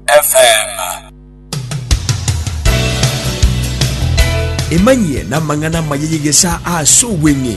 FM. Emanyie namang'ana amaya y'egesaa ase obweng'e.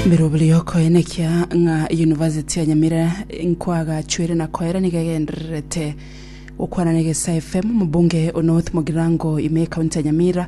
Birobiri okoenekia ng'a University ya Nyamira nkwagachwire na koera niga egendererete gokwana na Egesa FM. Omobunge o North Mogirango ime ekaunti ya Nyamira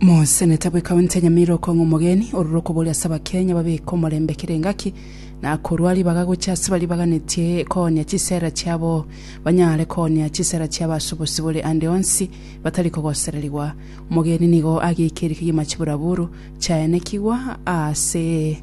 Mosenete bwe County ya Nyamira okong'a omogeni ororo okoboria ase abakenya babeke omorembe kera engaki na korwa ribaga gochia ase baribaganetie koonia chisera chiabo banyare koonia chisera chiabo ase obosibore ande onsi batari kogosererigwa. Omogeni nigo ageike erikigima chiburaburu chiaenekigwa ase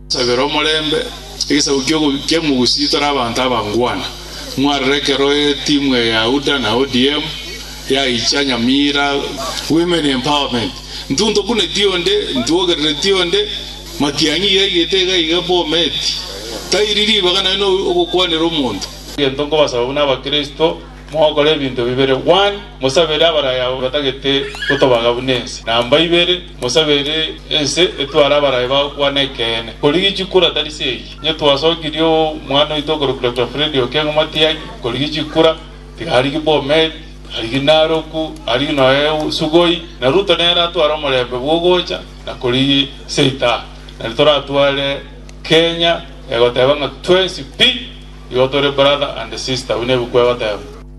Sabera omorembe. Egesaku kia Omogusii tore abanto abangwana. Mwarora ekero etimu eye UDA na ODM yaicha Nyamira. Women empowerment. Intwe ntokuneti onde, intwe ogerereti onde. Matiang'i yaigete iga iga Bomet. Tairi ribaga naye no ogokwanera omonto. Egento nkobasaba buna abakristo, mogokora ebinto bibere, one, mosabere abaraya batagete gotobaga buna ense, namba ibere, Mosabe ere ense etware abarai ba okwana ekeene. Korigichia kura tari se eyio. Inye twasokirie o mwana oito okorokwa Doctor Freddy Okengo Matiangi, korigichia kura, tiga arigi Bomet, arigi Naroku, arigi noe Sugoi, na Ruto nere atware omorembe bwogocha na korigi se itaha. Nari toratware Kenya egoteba ng'a twensi pi igo tore brother and sister, buna ebuku egoteba.